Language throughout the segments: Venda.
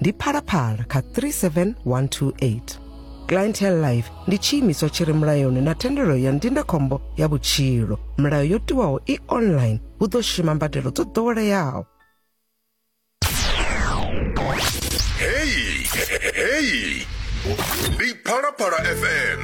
ndi phalaphala kha 37128 clientele life ndi tshiimiswa tshi re mulayoni na thendelo ya ndindakhombo ya vhutshilo milayo yo tiwaho i online hu ḓo shuma mbadelo dzo ḓoweleaho heyi heyi ndi phalaphala fm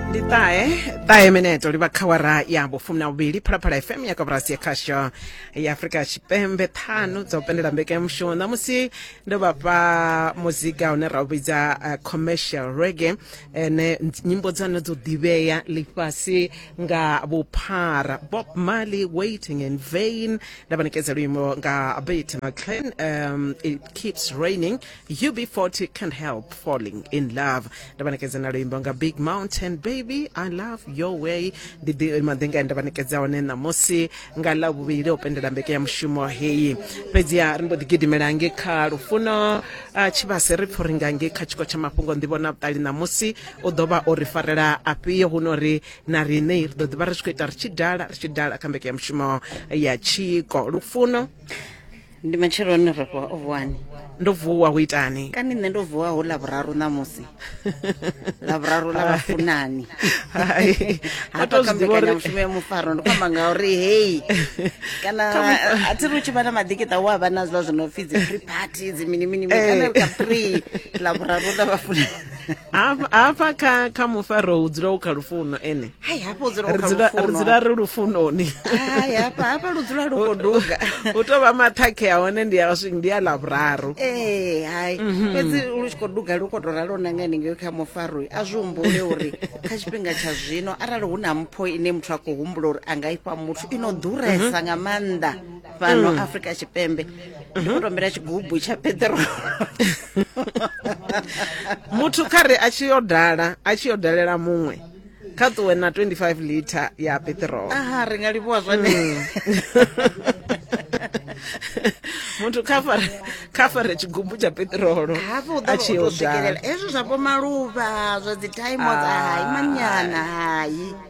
ndi ṱahe ṱahe meneto livha khawara ya vhufumi na vhuvhili phalaphala fm ya kaburasi ya khasho ya afurika tshipembe ṱhanu dzo pendela mbekanyamushumo ṋamusi ndo vha fha muzika une ra u vhidza uh, commercial rege ene nyimbo dza hone dzo ḓivhea ḽifhasi nga vhuphara bob marley waiting in vain nda vha ṋekedza luimbo nga bit mclan um, it keeps raining UB40 can't help falling in love ndavanekedza na luimbo nga big mountain baby i love your way ndi ḓi- maḓinga ane ndavanekedza one ṋamusi nga ḽa vhuvhili o pendela mbeke ya mushumo heyi fhedziha ri mbo ḓi gidimela nge kha lufuno ah, tshivhase ri pfho ri nga nge kha tshiko tsha mafhungo ndi vhona vhuṱali ṋamusi u ḓo vha o ri farela afhio hu no ri na riṋe ri ḓo ḓi vha ri tshi khou ita ri tshi dala ri tshi dala kha mbeke ya mushumo ya tshiko lufuno ndi matsheloni ri vuwa o vuwani ndo vuwa ho itani kani nṋe ndo vuwa ho lavhuraru ṋamusi lavhuraru ḽa vhafunani Hai, wa hafha tou kha zwi ḓivha uri- mbekanyamushumo ya mufaro ndi kwamba ngauri heyi kana a thi ri u tshi vha na maḓikiṱa u a vha na zwiḽa zwi no pfi dzi free party dzi mini mini mini Eh. kana kha free lavhuraru ḽa vhafunani hafha kha kha mufaro hu dzula u kha lufuno ene hai hafha u dzula u kha lufuno ri dzula ri lufunoni hai hafha hafha lu dzula lu kho duga u to vha mathakhe a hone ndi a swing ndi a la vhuraru eh hai mhm. fhedzi lu tshi kho duga lu kho to ralo na ngani ngeo kha mufaro a zwi humbule uri kha tshifhinga tsha zwino arali hu na mpho ine muthu a khou humbula uri a nga ifha muthu ino ḓuresa mhm. nga maanḓa fhano afrika tshipembe ndi khou tombela tshigubu tsha peṱirolo muthu kha re a tshi yo dala a tshi yo dalela muṅwe kha ṱuwe na 25 liter ya peṱirolo aha ri nga livhuwa zwone muthu kha fare kha fare tshigubu tsha peṱirolo hafho u a tshi ḓo yo u dala swikelela hezwo zwa vho maluvha zwa dzi time Ah. hai manyana hai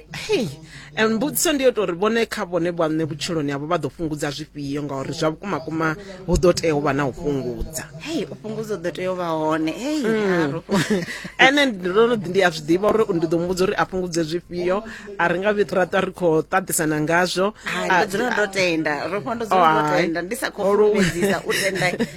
hei and mbudziso ndi yo tori vhone kha vhone vhaṋe vhutshiloni havho vha ḓo fhungudza zwifhio ngauri zwa vhukuma kuma hu ḓo tea u vha na u fhungudza hei u fhungudza u ḓo tea u vha hone hei haru ene ndo no ḓi ndi a zwi ḓivha uri ndi ḓo muvhudza uri a fhungudze zwifhio a ri nga vhi ra ṱwa ri khou ṱaṱisana ngazwo Hai, ndo dzula ndo tenda ro fha ndo dzula ndo Hai. tenda ndi sa khou Olo- fulufhedzisa u tenda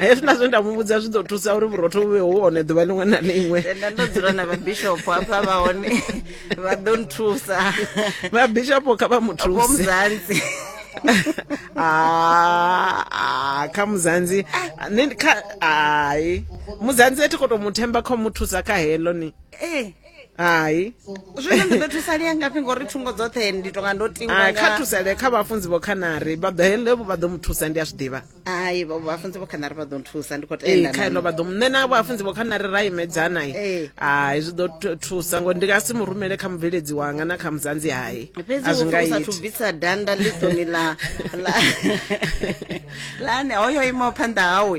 hezwi na zwe nda muvhudza zwi ḓo thusa uri vhurotho vhu vhe hu hone ḓuvha ḽiṅwe na ḽiṅwe tenda ndo dzula na vhabishopo hafha vha hone vha ḓo nthusa vhabishopo kha vha muthuse vomuzanzi Ah, ah, kha muzanzi ni kha hayi muzanzi a thi khou tou mu themba kha u mu thusa kha heḽo ni ee hai zwino ndi ḓo thusalea ngafhi ngori thungo dzoṱhe ndi tonga ndo tingwa kha thusalee kha vhafunzi vho khanari vha ḓo hele vha ḓo mu thusa ndi a zwi ḓivha hai vhafunzi vho khanari vha ḓo nthusa ndi khou tenda kha ino vha ḓo nṋe na vhafunzi vho khanari ra imedzana i hai zwi ḓo thusa ngori ndi nga si mu rumele kha mubveledzi wanga na kha muzanzi hai a zwi nga ithu bvisa danda ḽiṱoni ḽa ḽa ane hoyo imaho phanḓa hawe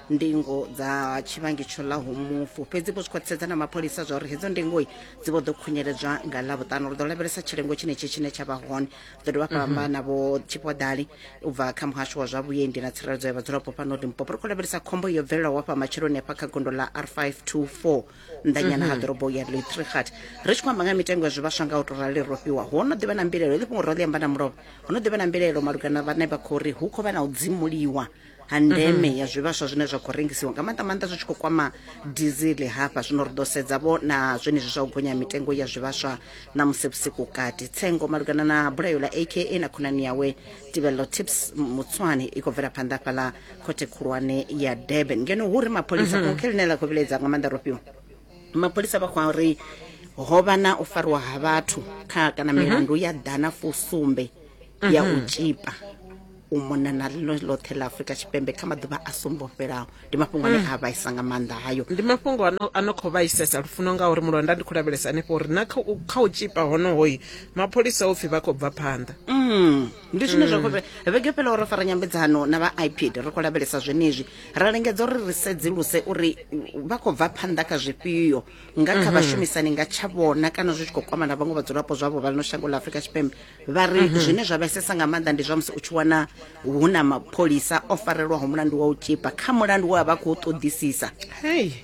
ndingo dza tshivhangi tsho ḽaho mufu fhedzi vho zwi khwaṱhisedza na mapholisa zwa uri hedzo ndingoi dzi vho ḓo khunyeledzwa nga ḽavhuṱanu ri ḓo lavhelesa tshilengo tshenetshi tshine tsha vha hone ḓo dovha hafha amba na vho tshipodali u bva kha muhasho wa zwa vhuendi na tsireledzo ya vhadzulapo fhano limpopo ri khou lavhelesa khombo yo bvelelaho hafha matshiloni hafha kha gondo ḽa r 524 nnḓanyana ha ḓorobo ya litrihat ri tshi khou amba nga mitengo ya zwivhaswa nga u to rali ro fhiwa ho no ḓivha na mbilaelo ḽi fhungo ro ḽi amba na mulovha ho no ḓivha na mbilaelo malugana na vhane vha khou ri hu khou vha na u dzimuliwa ha ndeme mm -hmm. ya zwivhaswa zwine zwa khou rengisiwa nga maanḓa maanḓa zwi tshi khou kwama dizili hafha zwino ri ḓo sedza vho na zwenezwi zwa u gonya mitengo ya zwivhaswa na musi vhusiku kati tsengo malugana na bulayo ḽa aka na khonani yawe tibello tips mutswani i khou bvela phanḓa fhaḽa khothe khulwane ya durban ngeno hu ri mapholisa mm -hmm. khe ḽine ḽa khou vhilaedza nga maanḓa rofhiwa mapholisa vha khou ri ho vha na u fariwa ha vhathu kha kana milandu ya ḓana fusumbe ya u tshipa u mona na ḽino ḽoṱhe ḽa afurika tshipembe kha maḓuvha a sumbo fhelaho ndi mafhungo ane a vhaisa nga maanḓa hayo ndi mafhungo ano ano khou vhaisesa lufuno ngauri mulonda ndi khou lavhelesa hanefho uri na kha u- kha u tshipa honohoyi mapholisa o pfi vha khou bva phanḓa Mm, ndi zwine zwa khou vhe- vhege fhela ro fara nyambedzano na vha ipid ri khou lavhelesa zwenezwi ra lingedza uri ri sedzuluse uri mm, vha khou bva phanḓa kha zwifhio nga kha vhashumisani nga tsha vhona kana zwi tshi khou kwama na vhaṅwe vhadzulapo zwavho vha lino shango ḽa afurika tshipembe vha ri mhm. zwine zwa vhesesa nga maanḓa ndi zwa musi u tshi wana hu na mapholisa o farelwaho mulandu wa u tshipa kha mulandu we a vha khou ṱoḓisisa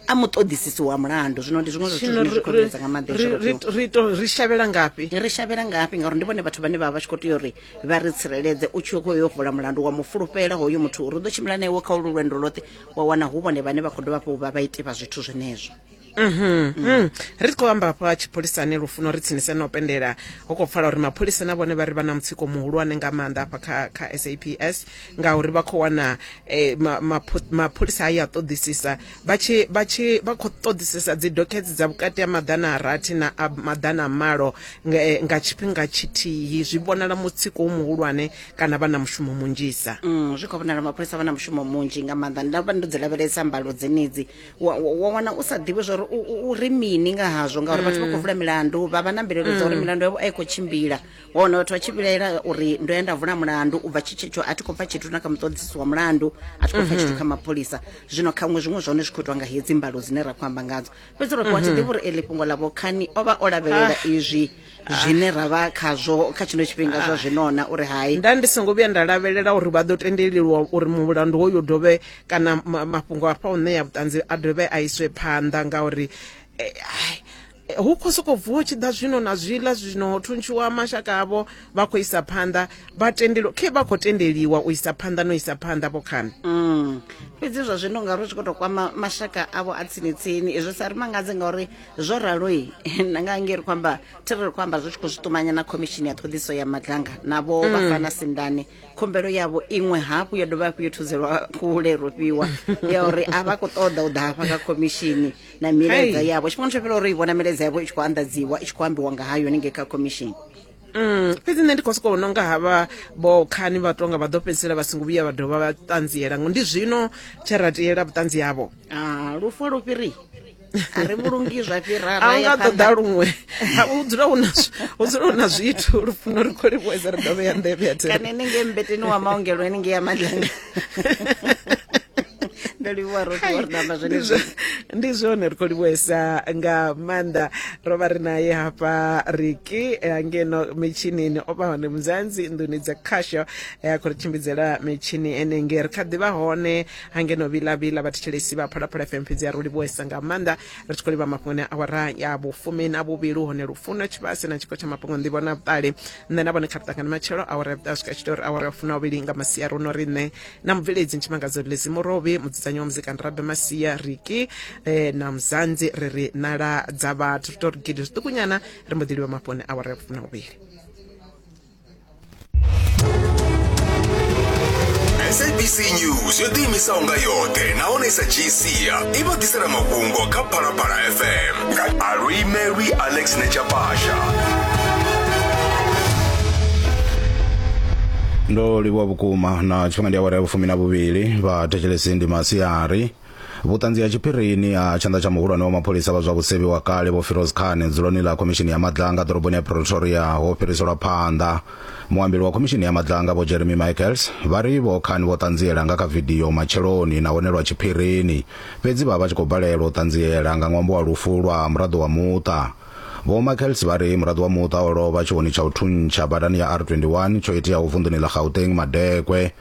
a mu ṱoḓisisi wa mulandu zwino ndi zwiṅwe zwithu zwine zwi khou vhesa nga maanḓa ri shavhela ngafhi ri shavhela ngafhi ngauri ndi vhone vhathu vhane vha vha vha tshi khou tea uri vha ri tsireledze u tshi khou yo vula mulandu wa mufulufhela hoyo muthu uri u ḓo tshimbila na iwe kha ulu lwendo lwoṱhe wa wana hu vhone vhane vha khou dovha fho vha vha ite vha zwithu zwenezwo Mhm. ri tshi khou amba hafha ha tshipholisani lufuno ri tsinise na u pendela ho khou pfala uri mapholisa na vhone vha ri vha na mutsiko muhulwane nga maanḓa hafha kha, kha saps ngauri vha khou wana eh, ma- mapho- mapholisa a ya ṱoḓisisa vha tshi vha tshi vha khou ṱoḓisisa dzi dokhedzi dza vhukati ha maḓana a rathi na a maḓana a malo nga, eh, nga tshifhinga tshithihi zwi vhonala mutsiko u muhulwane kana vha na mushumo munzhisa Mm, zwi khou vhonala mapholisa vha na mushumo munzhi nga maanḓa nda vha ndo dzi lavhelesa mbalo dzenedzi wa wana u sa ḓivhi zwori u ri mini nga hazwo ngauri vhathu vha khou vula milandu vha vha na mbilaelo dza uri milandu yavho a i khou tshimbila wa wana vhathu vha tshi vhilaela uri ndo ya nda vula mulandu u bva tshitshetsho a thi khou pfa tshithu na kha muṱoḓisi wa mulandu a thi khou pfa tshithu kha mapholisa zwino khaṅwe zwiṅwe zwa hone zwi khou itwa nga hedzi mbalo dzine ra khou amba ngadzo fhedzi ro wa thi ḓivhi uri eli fhungo ḽa vhokhani o vha o lavhelela izwi zwine ra vha khazwo kha tshino tshifhinga zwa zwinona uri hai nda ndi songo vhuya nda lavhelela uri vha ḓo tendelelwa uri mulandu hoyo dovhe kana ma- mafhungo a fha u ṋea vhuṱanzi a dovhe a iswe phanḓa ngauri eh, ai, eh, hu khou sokou vuwa tshi ḓa zwino na zwiḽa zwino ho thuntshiwa mashaka avho vha khou isa phanḓa vha tendeliwa khe vha khou tendeliwa u isa phanḓa no isa phanḓa vho khani Mm. fhedzi zwa zwino ngauri zwi khou tou kwama mashaka avho a tsini tsini izwi sa ri mangadze ngauri zwo raloi na nga ngeri khou amba thi ri khou amba zwi tshi khou zwi ṱumanya na khomishini ya ṱhoḓiso ya maganga navho vha fana sindane khumbelo yavho iṅwe hafhu yo dovha hafhu yo thuzelwa kule rofhiwa ya uri a vha khou ṱoḓa u ḓa hafha kha khomishini na milaedza yavho tshifhinga tsho fhela uri i vhona milaedza yavho i tshi khou anḓadziwa i tshi khou ambiwa nga hayo ningei kha khomishini Mm, fhedzi nṋe ndi khou sokou nonga havha vho khani vha tonga vha ḓo fhedzisela vha songo vhuya vha dovha vha ṱanziela ngo ndi zwino tshe ra tiela vhuṱanzi havho Ah, lufu a lu fhiri a ri vhulungi zwa fhira a nga ṱoḓa luṅwe hu dzula hu na hu dzula hu na zwithu lufuno ri khou livhuwedza ri dovhe ya nḓevhe ya kana ene nge mbeteni wa maongelo ene nge ya madlanga ndo livhuwa roṱhe wa ri namba zwenezwo ndi zwone ri khou livhuwesa nga maanḓa ro vha ri naye hafha riki eh, ngeno mitshinini o vha hone muzanzi nḓuni dza khasho eh, a khou ri tshimbidzela mitshini enenge ri kha ḓi vha hone ha ngeno vhilavhila vhathetshelesi vha phalaphala fm fhedzi a ro livhuwesa nga maanḓa ri tshi khou livha mafhungoni a awara ya vhufumi na vhuvhili hone lufuno tshivhase na tshiko tsha mafhungo nḓivho na vhuṱali nṋe na vhone kha ri ṱangane matshelo awara ya vhuṱaha swika tshi tea uri awara ya funa vhili nga masia ro no ri nṋe na mubveledzi ntshimangadzo lezi murovhi mudzudzanyi wa muzika nrabe masia riki eh, na muzanzi ri ri nala dza vhathu ri tou ri gidi zwiṱukunyana ri mbo ḓi livha mafhungoni awara ya vhufumi na vhuvhili sabc news yo ḓiimisaho nga yoṱhe nahone i sa dzhii sia i vha ḓisela mafhungo kha phalaphala fm nga aluimelwi alex nechapasha ndo livhuwa vhukuma na tshifhinga ndi awara ya vhufumi na vhuvhili vha thetshelesi ndi masiari Vhuṱanzi ha tshiphirini ha tshanḓa tsha muhulwane wa mapholisa vha zwa vhusevhi wa kale Vho Firoz Khan dzuloni ḽa khomishini ya madlanga ḓoroboni ya Pretoria ho fhiriselwa phanḓa. Muambeli wa khomishini ya madlanga Vho Jeremy Michaels vha ri Vho Khan vho ṱanziela nga kha vidio matsheloni nahone lwa tshiphirini, fhedzi vha vha tshi khou balelwa u ṱanziela nga ṅwambo wa lufu lwa muraḓo wa muṱa. Vho Michaels vha ri muraḓo wa muṱa o lovha tshioni tsha u thuntsha badani ya R21 tsho iteaho vunḓuni ḽa Gauteng madekwe.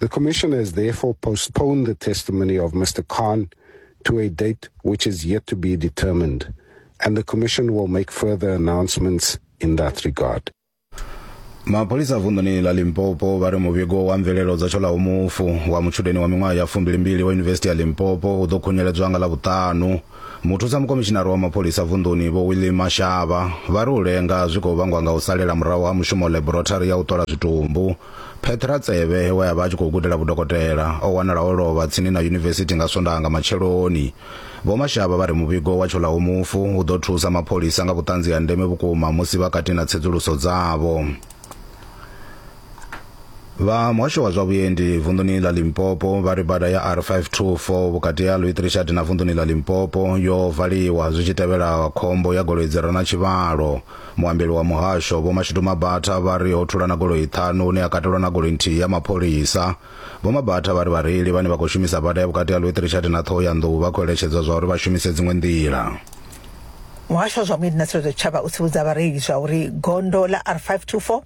The Commissioner has therefore postponed the testimony of Mr. Khan to a date which is yet to be determined, and the Commission will make further announcements in that regard. mapholisa vunḓuni la limpopo vha ri muvhigo wa mvelelo dza tshola umufu wa mutshudeni wa miṅwaha ya fumbilimbili wa yunivesithi ya limpopo u ḓo khunyeledzwa nga ḽa vhuṱanu Muthusa mukomishinari wa mapholisa vunḓuni Vho Willie Mashaba vha ri u lenga zwi khou vhangwa nga u salela murahu ha mushumo ḽeborothari ya u ṱola zwitumbu. Petra Tsebe we a vha a tshi khou gudela vhudokotela o wanala o lovha tsini na yunivesithi nga Swondaha nga matsheloni. Vho Mashaba vha ri muvhigo wa tsholaho mufu u ḓo thusa mapholisa nga vhuṱanzi ha ndeme vhukuma musi vha kati na tsedzuluso dzavho. vha muhasho wa zwa vhuendi vunḓuni ḽa limpopo vha ri bada ya r524 vhukati ha louis richard na vunḓuni ḽa limpopo yo valiwa zwi tshi tevhela khombo ya goloi dzi re na tshivhalo muambeli wa muhasho vho mashudu mabatha vha ri ho thulana goloi ṱhanu hune ya katelwa na goloi nthihi ya mapholisa Vho Mabatha vha ri vhareili vhane vha khou shumisa bada ya vhukati ha Lwet Richard na Thohoyandou vha khou eletshedzwa zwa uri vha shumise dziṅwe nḓila. Muhasho wa zwa Vhuendi na Tsireledzo Tshitshavha u tsivhudza vhareili zwa uri gondo ḽa R524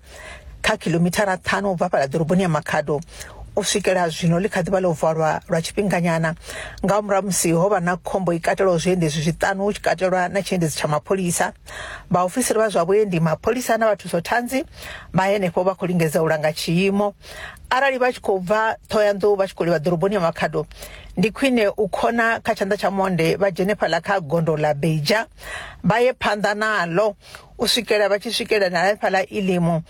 kha kilomithara ṱhanu u bva fhala ḓoroboni ya Makhado u swikela zwino ḽi kha ḓivha ḽo valwa lwa tshifhinganyana nga murahu musi ho vha na khombo i katelaho zwiendedzi zwiṱanu hu tshi katelwa na tshiendedzi tsha mapholisa vhaofisiri vha zwa vhuendi mapholisa na vhathuso thanzi vha henefho vha khou lingedza u langa tshiimo arali vha tshi khou bva ṱhohoyanḓou vha tshi khou livha ḓoroboni ya makhado ndi khwine u khona kha tshanḓa tsha monde vha dzhene fhaḽa kha gondo ḽa beja vha ye phanḓa naḽo u swikela vha tshi swikela na hafhaḽa ilimu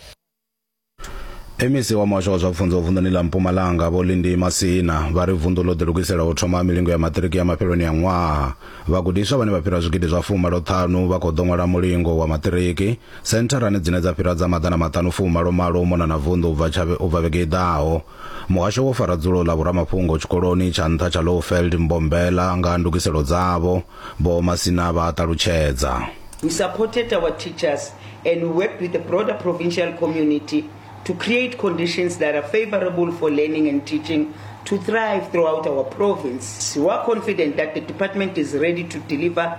mec wa muhasho wa zwa pfunzo vunḓuni ḽa mpumalanga vho lindi masina vha ri vunḓu ḽo ḓilugisela u thoma milingo ya maṱiriki ya mafheloni a ṅwaha vhagudiswa vhane vha fhira zwigidi zwa fumalo ṱhanu vha khou ḓo ṅwala mulingo wa maṱiriki Sentharani dzine dza fhira dza maḓana maṱanu fu malo malo u mona na vunḓu u bva tsha u bva vhege i ḓaho. Muhasho wo fara dzulo ḽa vhoramafhungo tshikoloni tsha nṱha tsha Lowveld Mbombela nga ha ndugiselo dzavho, Vho Masina vha a ṱalutshedza. We supported our teachers and we worked with the broader provincial community to create conditions that are favorable for learning and teaching to thrive throughout our province. We are confident that the department is ready to deliver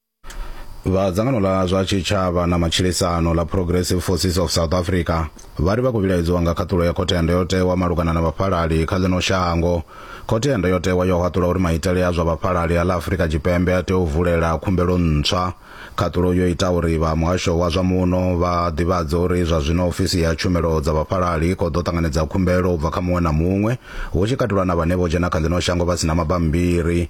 vha dzangano ḽa zwa tshitshavha na matshilisano ḽa progressive forces of south africa vha ri vha khou vhilaedzwa nga khaṱulo ya khothe ya ndayotewa malugana na vhafhalali kha ḽino shango khothe ya ndayotewa yo haṱula uri maitele a zwa vhafhalali a ḽa afurika tshipembe a tea u vulela khumbelo ntswa khaṱulo yo ita uri vha muhasho wa zwa muno vha ḓivhadze uri zwa zwino ofisi ya tshumelo dza vhafhalali i khou ḓo ṱanganedza khumbelo u bva kha muṅwe na muṅwe hu tshi katelwa na vhane vho dzhena kha ḽino shango vha si na mabambiri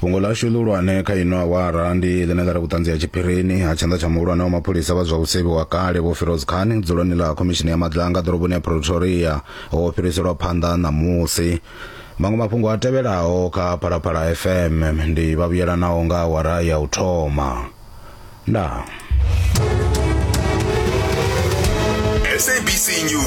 fhungo lashu ḽihulwane kha ino awara ndi ḽine ḽa ri vhuṱanzi ha tshiphirini ha tshanḓa tsha muhulwane wa mapholisa vha zwa u sevhiwa kale vho firoz khan dzuloni ḽa khomishini ya madlanga ḓoroboni ya pretoria ho fhiriselwa phanḓa ṋamusi maṅwe mafhungo a tevhelaho kha phalaphala fm ndi vhavhuyelanaho nga awara ya u thoma ndaa sabc news